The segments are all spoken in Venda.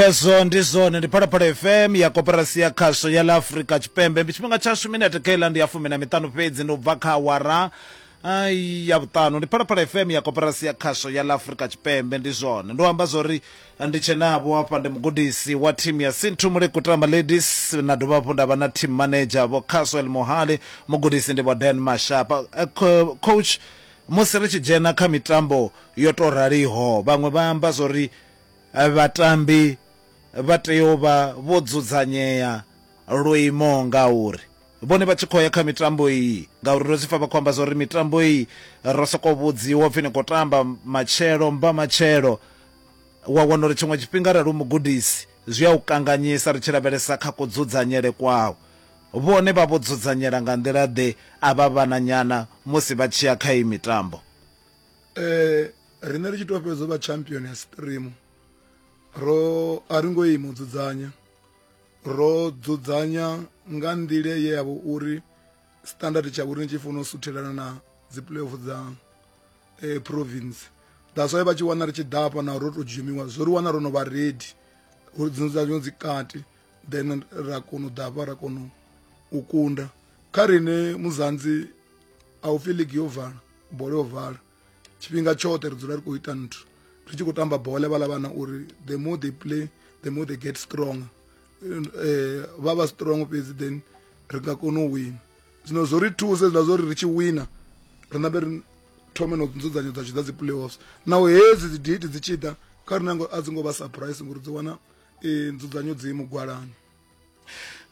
hezwo ndi zwone ndi phalaphala fm ya koperasi ya khasho ya la afurika tshipembe tshifhinga tshashu minete khaila ndi ya fumi na miṱanu fhedzi ndi u bva kha awara ai ya vhuṱanu ndi phalaphala fm ya koperasi ya khasho ya la afurika tshipembe ndi zwone ndo amba zwori ndi tshenavho hafha ndi mugudisi wa thimu ya sintu mulekutama ladies na dovha hafhu nda vha na team manager vho caswell mohale mugudisi ndi vho dan mashapa Eh, co- coach musi ri tshi dzhena kha mitambo yo to raliho vhaṅwe vha amba zwori Vhatambi vha tea u vha vho dzudzanyea lwo imaho ngauri vhone vha tshi khou ya kha mitambo iyi ngauri ndo zwi pfa vha khou amba zwa uri mitambo iyi ro sokou vhudziwa upfhi ni khou tamba matshelo mba matshelo wa wana uri tshiṅwe tshifhinga arali u mugudisi zwi a u kanganyisa ri tshi lavhelesa kha kudzudzanyele kwawo vhone vha vho dzudzanyela nga nḓila ḓe a vha vhananyana musi vha tshi ya kha iyi mitambo. eh riṋe ri tshi tou fhedza vha champion ya stream ro a ri ngo i mu dzudzanya ro dzudzanya nga nḓila ye ya vha uri standard tsha vhuri ni tshi funa u suthelana na dzi playoff dza eh, province that's why vha tshi wana ri tshi ḓafha na ro to dzhumiwa zwo ri wana ro no vha ready dzino dza dzino dzi kati then ra kona u ḓafha ra kona u kunda kha rine muzanzi a u pfi ligi yo vala bola yo vala tshifhinga tshoṱhe ri dzula ri khou ita nthu ri tshi khou tamba bola vhala vhana uri the more they play the more they get strong um eh, vha vha strong fhedzi then ri nga kona u wina zwino zwo ri thusa zwiḽa zwo ri ri tshi wina ri ṋambe ri thome no nzudzanyo dza tshiḓa dzi playoffs naho hedzi dzi date dzi tshi ḓa kha ri nango a dzi ngo vha surprise ngori dzi wana um nzudzanyo dzi mugwalani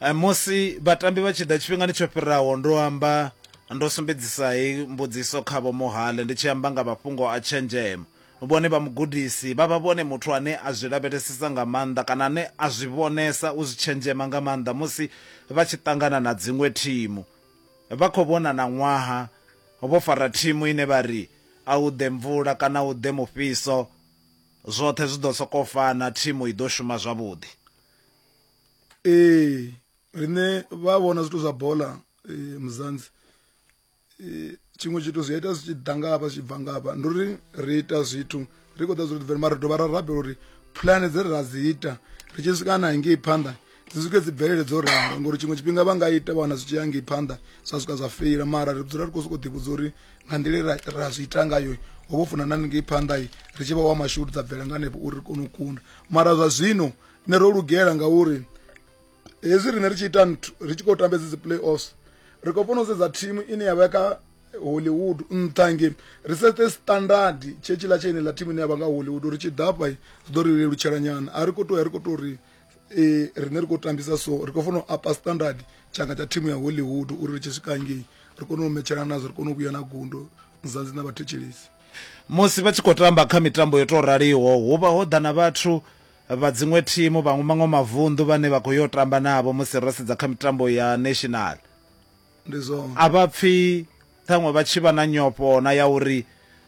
eh, musi vhatambi vha tshi ḓa tshifhingani tsho fhiraho ndo amba ndo sumbedzisa hei mbudziso kha vho mohale ndi tshi amba nga mafhungo a tshenzhemo vhone vha mugudisi vha vha vhone muthu ane a zwi lavhelesesa nga maanḓa kana ane a zwi vhonesa u zwi tshenzhema nga maanḓa musi vha tshi ṱangana na dziṅwe thimu vha khou vhona na ṅwaha vho fara thimu ine vha ri a u ḓe mvula kana u ḓe mufhiso zwoṱhe zwi ḓo sokou fana thimu i ḓo shuma zwavhuḓi ee riṋe vha vhona zwithu zwa bola eh, muzanzi eh, tshiṅwe tshithu zwi ita zwi tshi ḓa ngafha zwi bva ngafha ndi uri ri ita zwithu ri khou ḓa zwi ri mara ri dovha ra rabela uri pulane dze ra dzi ita ri tshi swika na ngei phanḓa dzi swike dzi bvelele dzo ralo ngori tshiṅwe tshifhinga vha nga ita vha wana zwi tshi ya ngei phanḓa zwa swika zwa feila mara ri dzula ri khou sokou ḓivhudza uri nga nḓila ra zwi ita ngayo ho vho funa na ngei phanḓa ri tshi vha wa mashudu dza bvela nga hanefho uri ri kone u kunda mara zwa zwino nṋe ro lugela ngauri hezwi riṋe ri tshi ita nthu ri tshi khou tambedza dzi play offs ri khou funa u sedza thimu ine ya vha kha hollywood nṱha nge ri sete standard tshe tshiḽa tsha ine ḽa thimu ine ya vha nga hollywood uri tshi ḓafha zwi ḓo ri lelutshela nyana a ri khou to ya ri khou to ri um riṋe ri khou tambisa so ri khou funa u apa standard tshanga tsha thimu ya hollywood uri ri tshi swika ngei ri kone u metshelana nazwo ri kone u vhuya na gundo nzanzi na vhathetshelesi Musi vha tshi khou tamba kha mitambo yo tou raliho, hu vha ho ḓa na vhathu vha dziṅwe thimu vha maṅwe mavunḓu vhane vha khou yo tamba navho musi ro sedza kha mitambo ya national. Ndi zwone. A vha pfi ṱhaṅwe vha tshi vha na nyofho na ya uri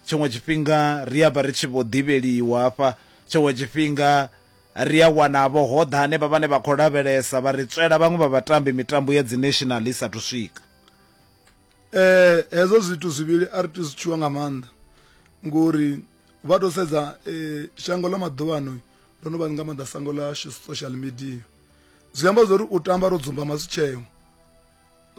tshiṅwe tshifhinga ri a vha ri tshi vho ḓivheliwa hafha tshiṅwe tshifhinga ri a wana vho ho ḓa hanevha vhane vha khou lavhelesa vha ri tswela vhaṅwe vha vhatambi mitambo ya dzi national i sathu swika. eh hezwo zwithu zwivhili a ri tea zwi tshiwa nga maanḓa ngori vha to sedza eh shango ḽa maḓuvhano ndo no vha nga maanḓa sango ḽa social media zwi amba zwori u tamba ro dzumba masitsheo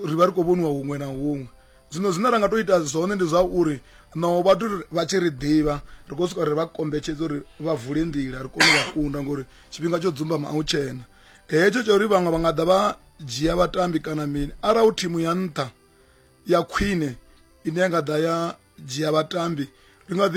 ri vha ri khou vhoniwa huṅwe na huṅwe zwino zwine ra nga to ita zwone ndi zwa uri no vhathu vha tshi ri ḓivha ri khou swika ri vha kombetshedza uri vha vule nḓila ri kone u vha kunda ngori tshifhinga tsho dzumbama a u tshena hetsho tsha uri vhaṅwe vha nga ḓa vha dzhia vhatambi kana mini arali hu thimu ya nṱha ya khwine ine ya nga ḓa ya dzhia vhatambi ri nga ḓi